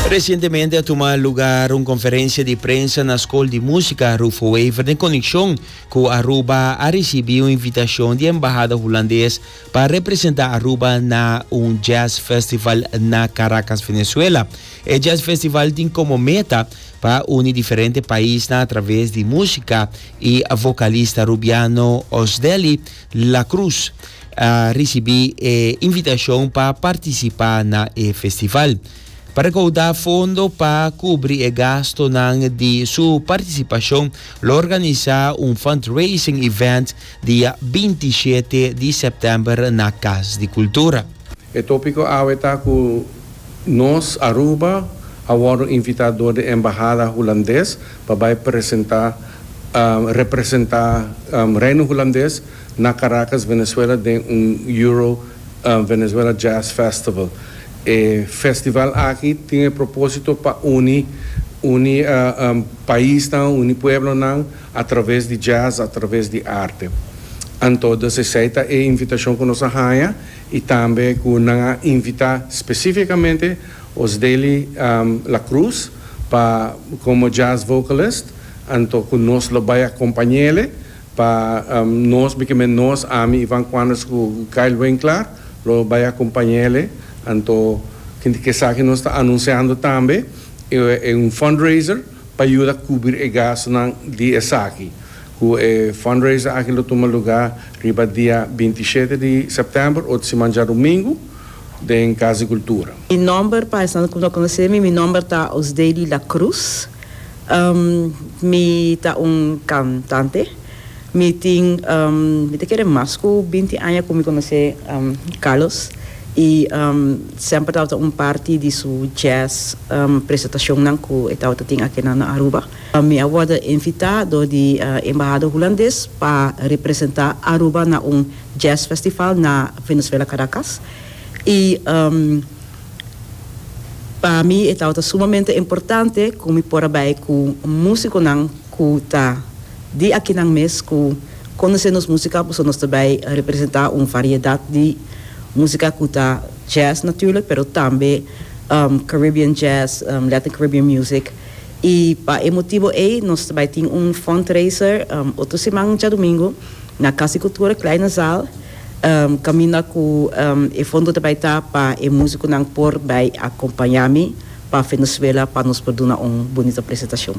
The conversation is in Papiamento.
Resientemente a tuma lugar un conferencia di prensa na School di Musica Rufo Wever den conexion cu Aruba a ricibi un invitacion di Embahada Hulandes pa representa Aruba na un Jazz Festival na Caracas, Venezuela. E Jazz Festival tin como meta pa uni diferente paisnan a traves di musica y vocalista Rubiano Osdeli, La Cruz a risibí e invitashon pa partisipá na e festival. Pa rekaudá fondo pa kubri e gastonan di su partisipashon lo organisá un fundraising event dia binti shete di sèptèmber na Kas di Kultura. E tópiko awe ta ku Nos, Aruba, a wòrdu invitá dor di e embahada hulandes pa bai presenta representa Reino Hulandes na Caracas, Venezuela den un Euro Venezuela Jazz Festival. E festival aki tin e proposito pa uni uni paisnan, uni pueblonan a traves di jazz, a traves di arte. Anto dus esei ta e invitacion cu nos a haya y tambe cu nan a invita specificamente Os deli La Cruz pa como jazz vocalist anto cu nos lo bay a compañele pa nos bikimen nos ami Ivan Quanders cu Kyle Winklar lo bay a compañele anto tin ke sa ki nos ta anunciando tambe e un fundraiser pa yuda cubri e gastunan di esaki cu e fundraiser aki lo tuma lugar riba dia binti i shete di September ota siman djarumingu. den Cas di Cultura. Mi nomber pa esnan cu no conoce mi, mi nomber ta Osdeli La Cruz. Mi ta un cantante. Mi tin, mi ta kere mas cu binti aña cu mi conoce Carlos y semper tabata un parti di su jazz presentacionnan cu e tabata tin aki na Aruba. Mi a wordo invita door di Embahada Hulandes pa representa Aruba na un. Jazz Festival na Venezuela Caracas y pa mi e tabata sumamente importante cu mi por a bay cu musiconan cu ta di akinan mes cu conoce nos musica pasobra nos ta bay representa un variedad di musica cu ta Jazz natuurlijk pero tambe Caribbean Jazz Latin Caribbean Music y pa e motibo ey nos ta bay tin un Fundraiser otro siman djadomingo na Casa Cultura Klein na Zaal, caminda cu e fondo ta bay ta pa e musiconan por bay a acompaña mi pa Venezuela pa nos por duna un bonito presentacion.